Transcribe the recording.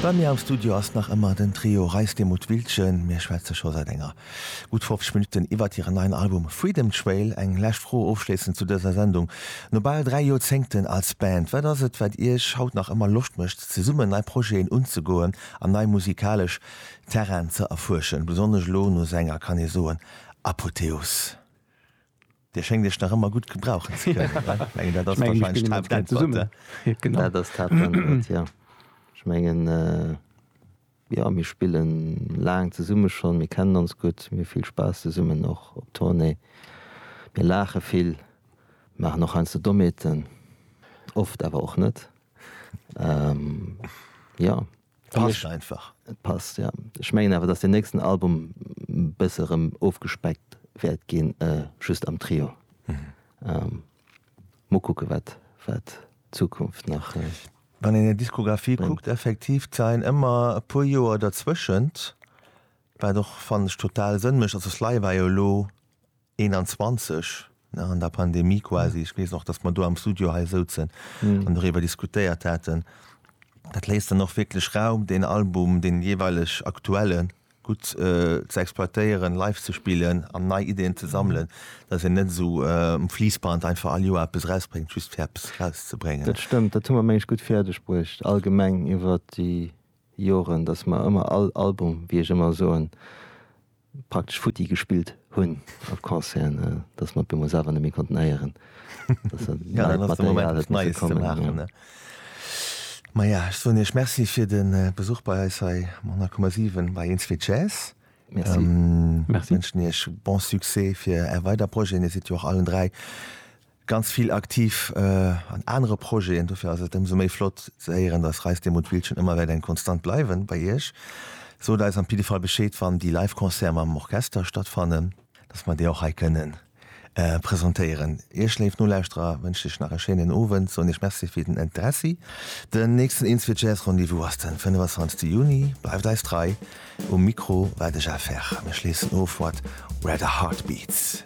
Bei mir am Studio ass nach ëmmer den Trio Reisdemuth-Wiltgen. Mir schwätze scho säit enger gutt 50 Minutten iwwert hiren neien Album Freedom Trail. Eng lescht Fro ofschléissend zu dëser Sendung, No bal dräi Joerzéngten als Band, wat ass et, wat Iech haut nach ëmmer Loscht mécht, zesummen nei Projeten unzegoen an nei musikalesch Terrainen ze erfuerschen? Besonnesch elo no senger, kann ee soen, Apothéose? Dir schéngt Iech nach ëmmer gutt gebrauchen ze kënnen, ne? Ech mengen, dat ass warscheinlech d'Haaptantwort. Dat ass d'Haaptantwort, jo. Ech mengen, jo, mir spille laang zesumme schonn, mir kennen ons gutt, mir hu vill Spaass zesummen, och op Tournée. Mir laache vill, maachen och heiansdo Dommheeten, oft awer och net. Jo. Passt einfach. Et passt, ja. Ech mengen awer, datt den nächsten Album e bësse rëm ofgespeckt wäert ginn, just am Trio. Mol kucke wat d'Zukunft nach. Wann een hir Diskografie kuckt, effektiv d'Zeien ëmmer e puer Joer derzwëschent, wat och, fannen ech, total Sënn mécht. Also Sly war jo elo 21, nach an der Pandemie quasi, ech weess och, datt mer do am Studio hei souzen an doriwwer diskutéiert haten, dat léisst dann och wierklech Raum, deen Album, dee jeeweileg aktuelle gutt ze exploitéieren, live ze spillen an nei Ideeën ze sammelen, datt een net esou um Fliessband einfach all Joer eppes erausbréngt, just fir eppes erauszebréngen. Dat stëmmt, dat hu mer, meng ech, gutt fäerdeg bruecht allgemeng iwwer déi Joren, datt mer ëmmer all Album, wéi ech ëmmer soen, praktesch futti gespillt hunn op Concerten, dass mer op eemol selwer net méi konnten héieren, dass dat neit Material huet misse kommen. Ma ja, ech soen Iech Merci fir de Besuch bei eis hei um 100,7 bei Eenzwee Jazz. Ech wënschen Iech bon Succès fir Är weider Projeten. Dir sidd jo och allen dräi ganz vill aktiv an anere Projeten. Dofir ass et ëmsou méi flott ze héieren, dass Reis de Mut Wildchen ëmmer wäert eng Konstant bleiwen bei Iech. Sot eis am Piddefall Bescheed, wann déi live Concerte mam Orchester stattfannen, dass mer déi och hei kënnen presentéieren. Iech léif Nolauschterer wënscht ech nach e schéinen Owend, soen iech Merci fir den Interessi. Den nächsten Insfeed Jazz Rendez-vous ass den 25 Juni. Bleift eis trei. Um Mikro war de Jeff Herr. Mir schléissen of mat Where the Heart Beats.